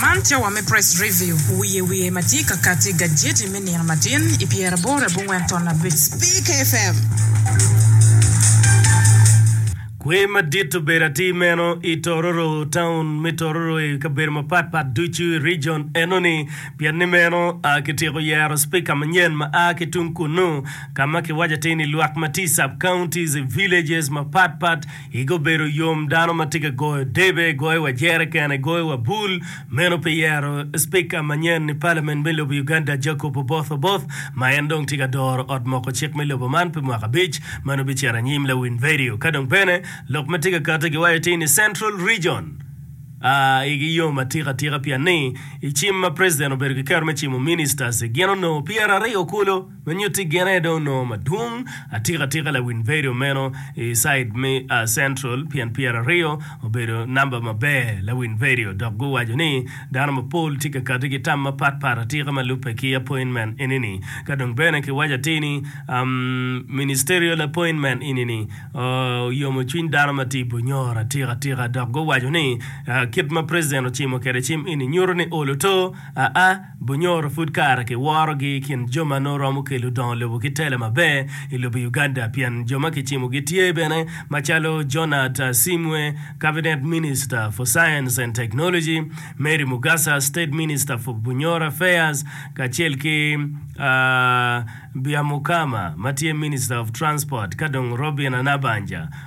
Man cawa me Press Review wiye wiye ma tye ka kati gajeti me nino matin i pyeraboro abongwen ton abic Speak FM. Kwer madit obedo atir meno i Tororo, taun me Tororo i kabedo mapat pat ducu i region enoni. Pien ni meno, kityeko yero Speaker manyen ma a ki tung kunnu, ka ma kiwaco atir ni lwak ma tye i sub-counties, villages mapat pat, Igi obedo yom dano ma tye ka goyo debe, goyo wa jerekene, goyo wa bul. Meno pi yero Cipika manyen i palamen me lobo Uganda Jacob Oboth Oboth ma en dong tye ka doro ot moko cik me lobo man pi mwaka abic ma nongo bicito anyim lawin vedio. Ka dong bene lok ma tye ka kati giwaco ti ni Central Region a igi yom atika atika pien ni i cim ma President obedo ki kero me cimo Ministers gin onongo pyeraryo kulu. Me nyutti gin aye dong onongo madwong atika atika lawin vedio meno i side me Central pien pyera aryo obedo namba maber lawin vedio dok guwaco ni dano mapol tye ka kati ki tam mapat pat atika ma lubbe ki appointment eni ni ka dong bene ki waco atir ni ministerial appointment eni ni oyomo cwiny dano ma tye i Bunyoro atika atika dok guwaco ni kit ma president ocimo kwede cim eni nyuto ni olo to a Bunyoro pud kare ki worogi i kin jo ma nongo romo kelo odongo lobo ki tela maber i lobo Uganda pien jo ma kicimo gitye bene macalo Jonat Asimwe, Cabinet Minister for Science and Technology, Mary Mugasa, State Minister for Bunyoro Affairs, kacel ki Byamukama ma tye Minister of Transport ka dong Robina Nabanja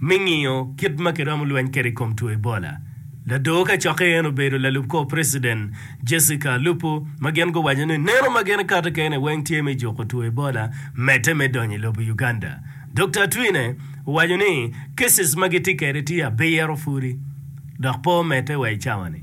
Me ngiyo kit ma kiromo lweny kwede i kom two Ebola, lador kacokke eno obedo lalub kor preciden Jessica Alupo ma gin guwaco ni neno ma gin kato kene weng tye me juko two Ebola medde me donyo i lobo Uganda. Dokta Atwine owaco ni cases ma gitye kwede tye abiro pudi dok pe omedde wa i cawa ni.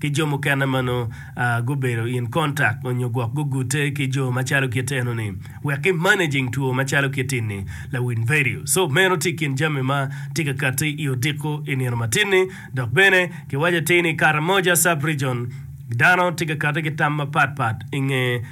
ki jo mukene ma nongo gubedo in contact onyo gwok gugute ki jo macalo kit eno ni wek ki managing two macalo kit ini lawiny vedio. So meno tye ikin jami ma tye ka kati i odiko i nino matin ni. Dok bene ki waco atir ni Karamoja sub region dano tye ka kati ki tam mapat pat inge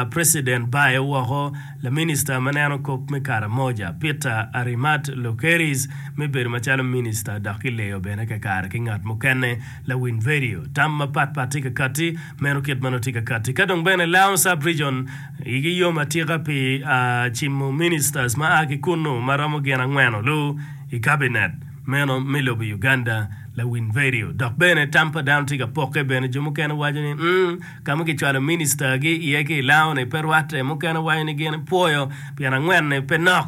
president bayo woko la minister ma neno kop me Karamoja Peter Arimat Lokeris me bedo macalo minister dok ki leyo bene kakare ki ngat mukene Lawiny vedio, Tam mapat pat tye ka katti, meno kit ma nongo tye ka katti. Ka dong bene Laon Sub Region igi yom atika pi cimo ministers ma a ki kunnu ma romo gin angweno lu i Kabinet meno me lobo Uganda. Lawiny vedio, Dok bene tam pa dano tye ka pokke bene, jo mukene waco ni mm ka ma kicwalo minister gi iye ki i Laon-ni pe rwatte, mukene waco ni gin pwoyo pien angwen-ni pe nok.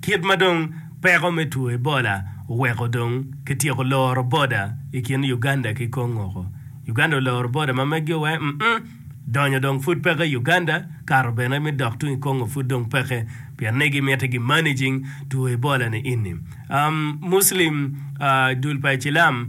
Kit ma dong peko me two Ebola oweko dong kityeko loro boda i kin Uganda ki Kongoko, Uganda oloro boda ma megi owe mm donyo dong pud peke i Uganda, kato bene me dok tung i Kongo pud dong peke pien ni gimiti gi managing two Ebola ni ini. Muslim dul pa icilam.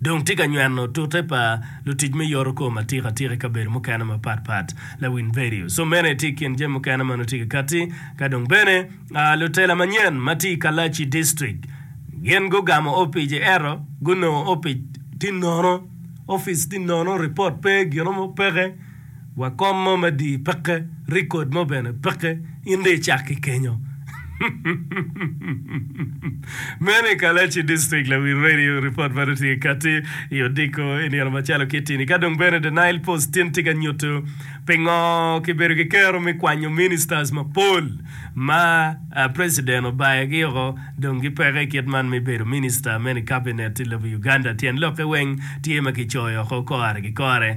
dong tye ka nyweno tute pa lutic me yorokom atikatika i kabedo mukene mapat pat. Lawiny Vedio. Som mene tye i kin jami mukene ma nongo tye ka katti ka dong bene lutela manyen ma tye i Kalachi District gin gugamo opic i ento gunongo opic tye nono, ofice tye nono, ripot pe, gin mo peke. wa kom mo me dii peke record mo bene peke in dong icak ki kenyo meno i Kalachi district lawil radio report meno tye kati i odiko i nino macalo kitini ka dong bene the nile post tin tye ka nyutu pingo kibedo ki kero me kwanyo ministers mapol ma president obayo gi oko dong gi peke kit man me bedo minister meno i cabinet i lobo Uganda tyen lokke weng tye ma kicoyo oko kore ki kore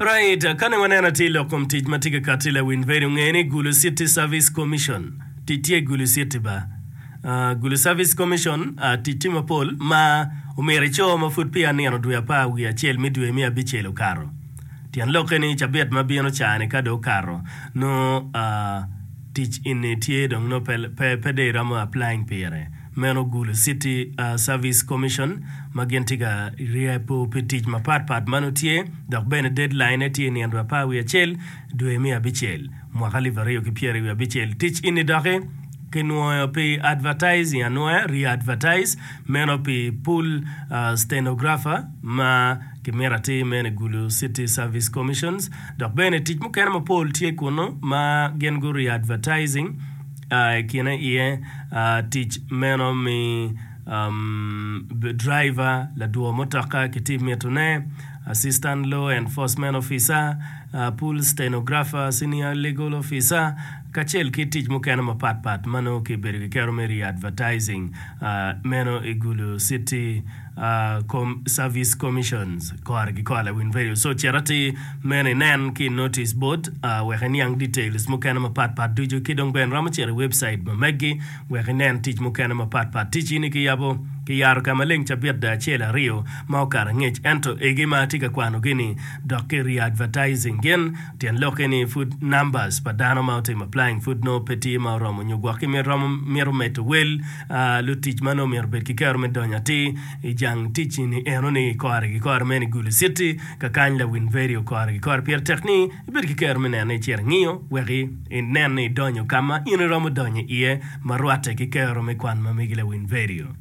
Right, kani waneno atir i lok kom tic ma tye ka katti la win bedo nge ni gulu city service commission tic tye gulu city ba aah gulu service commission aah tic tye mapol ma omyero ico ma pud peya nino dwe apar wiye acel me dwe me abicel okato tyen lokke ni cabit ma bino caa ni ka dong okato nongo aah tic eni tye dong nongo pe pe dong iromo applying pire. Meno gulo City Service Commission ma gin tye ka ryepo pi tic mapat pat ma nongo tye dok bene deadline-ne tye i nino apar wiye acel dwe me abicel mwaka alip aryo ki pyeri wiye abicel. Tic eni doki ki nwoyo pi advertising anwoya, re-advertise, meno pi pool stenographer ma ki mito atir meno i gulo City Service Commissions dok bene tic mukene mapol tye kunu ma gin gu re-advertising. I kine iye tic meno mi driver, ladwo mutoka ki tim mitone, assistant law enforcement officer, pool stenographer, senior legal officer, kacel ki tic mukene mapatpat ma nongo kibedo kiketo me re-advertising meno i Gulu city. Service Commissions kore ki kore lawiny radio so cit atir meno inen ki notice board wek iniang details mukene mapat pat ducu ki dong bene iromo cito i website ma meggi wek inen tic mukene mapat pat tic ini ki yabo ki yaro ka maleng cabit da acel aryo ma okato angec ento egi ma atye ka kwanogi ni dok ki readvertising gin Tyen lokke ni pud numbers pa dano ma otimo applying pud nongo pe tye ma oromo nyo gwok ki mit romo mito medo wel lutic ma nongo omyero obed ki kero me donyo atir i jang tic ni eno ni kore gi kore meno i Gulu City ka kany lawin vedio kore gi kore pire tek ni ibed ki kero me neno ni icito ingiyo wek inen ni idonyo ka ma in iromo donyo iye ma rwatte ki kero me kwan ma megi lawin vedio.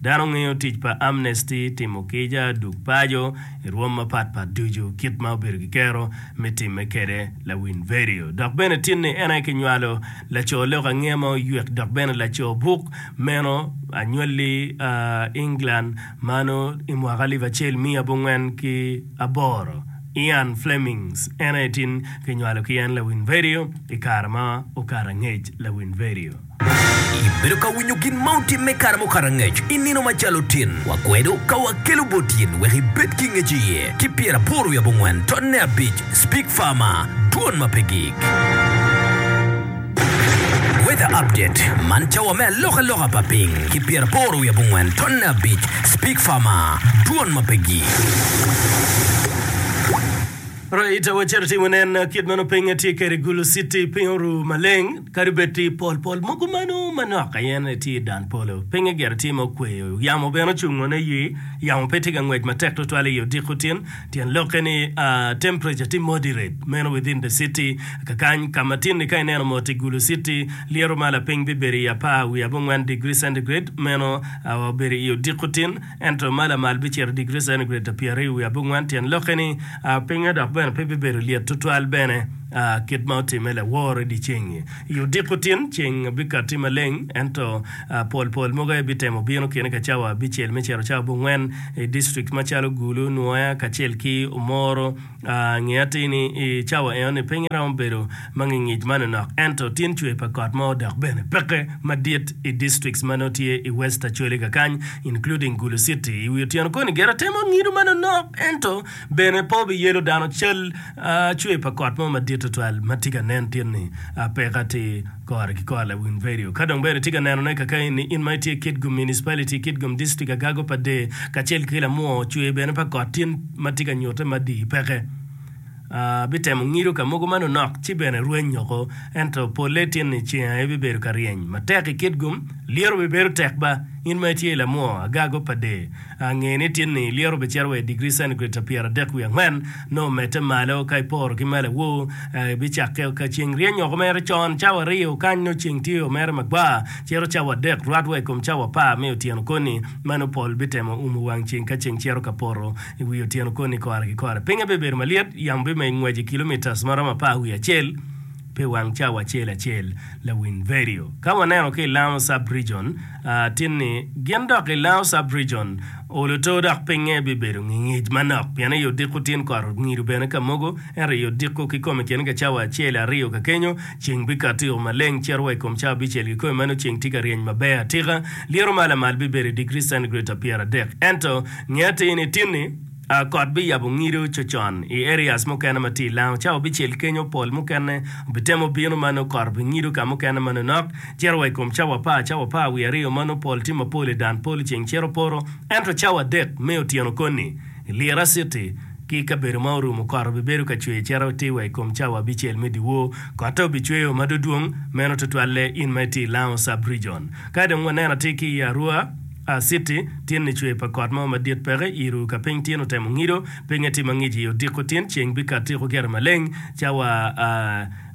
Dano ngeyo tic pa Amnesty timo kica duk paco i rwom mapat pat ducu kit ma obedo ki kero me timme kede lawin vedio dok bene tin ni en aye ki nywalo laco lok ange ma oywek dok bene laco buk meno anywali a England ma no i mwaka alip acel miya abongwen ki aboro Ian Flemings en aye tin ki nywalo ki en lawin vedio i kare ma okato angec lawin vedio. Ibedo ka winyo gin ma otimme kare mukato angec i nino macalo tin wa kwedo ka wakelo bot in wek ibed ki ngec iye ki pyer aboro wiye abongwen totne abic Speak Farmer Dwon ma pe gik. Weather Update Man cawa me aloka loka pa piny ki pyer aboro wiye abongwen totne abic Speak Farmer Dwon ma pe gik. Raita wacito timo nen kit meno pinge tye kede Gulu city piny oru maleng. Kadi bed tye pol pol mogo meno manok aye ni tye i dan polo, pinye gire tye ma okweyo, yamo bene ocung wano aye. Yamo pe tye ka ngwec matek twatwal i odiko tin, tyen lokke ni temperature tye moderate. Meno within the city, kakany ka ma tin-ni ka ineno mot i Gulu City, lyeto ma lapiny bibedo i apar wiye abongwen degree centigrade, meno obedo i odiko tin. Ento ma lamal bicito digri centigrade ta pyeraryo wiye abongwen, tyen lokke ni pinye dok bene pe bibedo lyet tutwal bene kit ma otimme laworo i dyeceng-ngi. I odiko tin, ceng bikatti maleng, ento pol pol mogo aye bitemo bino kene ka cawa abicel me cito cawa abongwen i distrikt macalo Gulu, Nwoya, kacel ki Omoro. Nge atir ni i cawa enoni piny romo bedo ma ngingic ma nonok ento tin cwer pa kot mo dok bene peke madit i districts ma nongo tye i West Acholi kakany, including Gulu City. I wi otyeno koni gire temo ngido ma nonok ento bene pe obiyelo dano cal cwer pa kot mo madit tutwal ma tye ka nen tin ni peke atir. Kore ki kor lawiny redio ka dong bene tye ka nenone kakayi ni in ma itye kit gum municipality, kit gum district agago pa de kacel ki lamwo cwer bene pa kot tin ma tye ka nyute ma di peke. Ah, bitemo ngido ka mogo ma nonok ci bene rweny oko, ento polle tin ni ceng aye bibedo ka ryeny matek i kit gum, lyeto bibedo tek ba in ma itye lamwo agago pa de. Ange ni tin ni ilyero bicito wa i digri centigrade ta pyeradek wiye angwen, nongo medde malo ka iporo ki malawo. Aa, ibicakke o ka ceng ryeny oko mere con, cawa aryo kany nongo ceng tye o mere magwar, cito cawa adek rwat wa i kom cawa apar me otyeno koni. Mano pol bitemo umo wang ceng ka ceng cito ka poto i wi otyeno koni kore ki kore. Pinye bibedo malyet, yamo bimeny ngwec i kilomitas ma romo apar wiye acel. pi wang cawa acel acel, Lawiny Verio. Ka waneno ki i Lango Sub-Region, tin ni gin dok i Lango Sub-Region olo to dok pingnge bibedo ngingic manok pien i odiko tin kot ongido bene ka mogo, ento i odiko kikome kene ka cawa acel aryo ka kenyo, ceng bikato yo maleng cito wa i kom cawa abicel kikome ma nongo ceng tye ka ryeny maber atika. Lyeto ma lamal bibedo i digri centigrade pa pyeradek. Ento, nge atir ni, tin ni. Kot biyabo ngido cocon i areas mukene ma tye i lango cawa bicel kenyo pol mukene obitemo bino ma nongo kot obingido ka mukene ma nonok cito wa i kom cawa apar cawa apar wiye aryo ma nongo pol tye mapol i dan polo ceng cito poto ento cawa adek me otyeno koni i Lira city ki kabedo ma orumo kot obibedo ka cwer cito tir wa i kom cawa abicel me dyewor kotte obicweyo ma dodwong meno tutwalle in ma itye i lango sub region kadi dong waneno atir ki i Arua. Aciti, Tin ni cwer pa kot mo madit peke i ru ka piny tin otemo ngido. Pinye tye mangic i odiko tin. Ceng bikato tyeko gire maleng cawa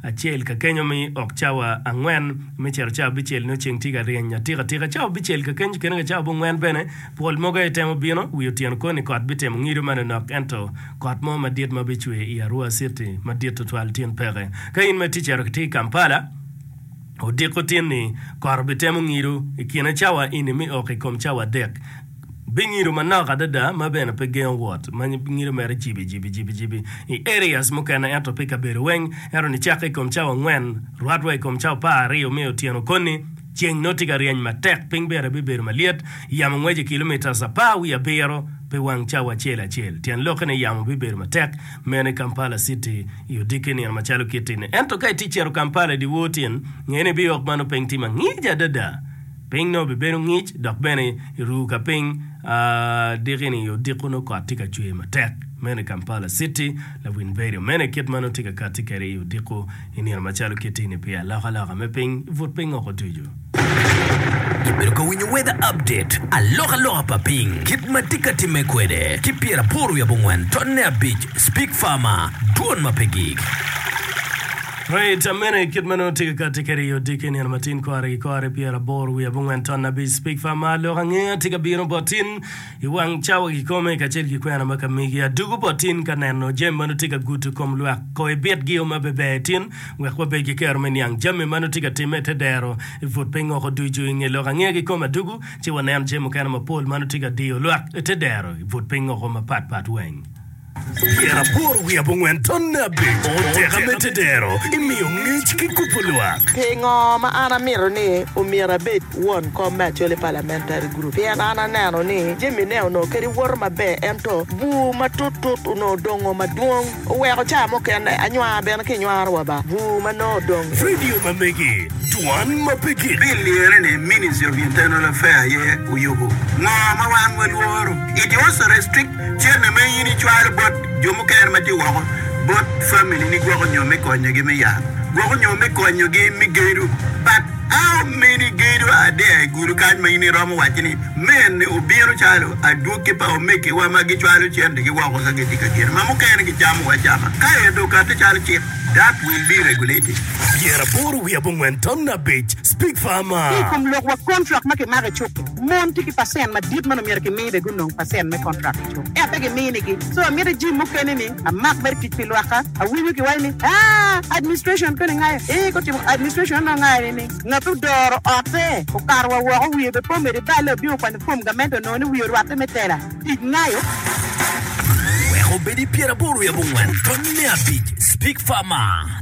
acel ka kenyo mi ok cawa angwen. Me cito cawa abicel nio ceng tye ka ryeny atika tika. Cawa abicel ka kenyo kene ka cawa abongwen bene pol mogo aye temo bino. Wi otyeno kor ni kot bitemo ngido ma nonok ento kot mo madit ma bicwer i arwa aciti madit tutwal tin peke. Ka in ma itye cito ki i Kampala, odiko tin ni kot obitemo ngido i kine cawa eni me ok i kom cawa adek. Bingido manok adada ma bene pe gengo wot ma ngido mere jibi-jibi-jibi-jibi i areas mukene ento pe i kabedo weng. Ento nicakke i kom cawa angwen, rwat wa i kom cawa par aryo me otyeno koni, ceng nongo tye ka ryeny matek, piny bene bibedo malyet, yamo ngweco kilometres apar wiye abiro pi wang cawa acel acel. Tyen lokke ni yamo bibedo matek meno i Kampala City. i odikke nino macalo kit-ti-ni. Ento ka itye cito Kampala i dyewor tin, nge ni biyok ma nongo piny tye ma ngic adada. Piny nongo bibedo ngic dok bene iru ka piny adiki-ni i odiko nongo kot tye ka cwer matek. Meno i Kampala citi, Lawin Berio. Meno e kit ma nongo tye ka katti kwede i odiko i nino macalo kit-ti-ni pi alokaloka me piny i but piny woko ducu. Ibedo ka winyo weather update, alokaloka pa piny, kit ma tye ka timme kwede, ki pyeraboro wiye abongwen tonne abic Speak Farmer, Dwon ma pe gik. Rate amene kit ma nongo tye ka kati kwede i odiki nino matin, kore ki kore, pyeraboro wiye abongwen tonne abic Speak Farmer, Lok angeya tye ka bino bot in. I wang cawa kikome kacel ki kwena ma ka migi adugu bot tin ka neno jami ma nongo tye ka gudo kom lwak. Koh ibitgi o ma beber tin wek wabed ki kero me niang jami ma nongo tye ka timme i te dero i put piny woko ducu. I nge lok ange kikome adugu ci wanen jami mukene mapol ma nongo tye ka diyo lwak i te dero i put piny woko mapat pat weng. Pien aporo wi abongwen tonne abic, oteka me tedero imiyo ngec ki kubo lwak. Pingo ma an amito ni omyero abed won kom me Acholi Parliamentary Group? Pien an aneno ni jamine onongo kadi woto maber ento bur matut tut onongo odongo madwong. Oweko ca mukene anywanga bene kinywaro wa ba bur ma nongo odong. Radio ma megi, Dwan ma pe gik. Bill liyere ni Ministry of Internal Affair aye oyubo ngo ma wan walworo. It was restricted. Cente ma in icwalo bot jo mukene ma tye woko bot familini gwoko nyo me konyogi me yat, gwoko nyo me konyogi me gedo. But how many gedo are there i gulu kany ma in iromo wacci ni mene obino calo adwogi pa omegiwa ma gicwalo centegi woko ka gitye ka gedo ma mukene gicamo acama ka ento okati calo cik? That will be regulated. Pyeraboro wiye abongwen tam abic, Speak farmer. Ki i kom lokwa, kontrak ma kimako i cuk-ki. Mon tye ki pacent madit ma nongo myero kimi be gunong pacent me contract ki cuk ea pe giminigi. So amito ijim mukene ni amak mere tic pi lwakka. Awinyo kiwaco ni aa administration koni ngayo ee gutimo administration onongo ngayo ni ni ngat odoro ote okato wa woko wiye be po medo ibale obino kwanyo form gamente onongo ni wiye orwate me tela tic ngayo. Wek obed i pyeraboro i abongwen, tonni me abic, Speak Farmer.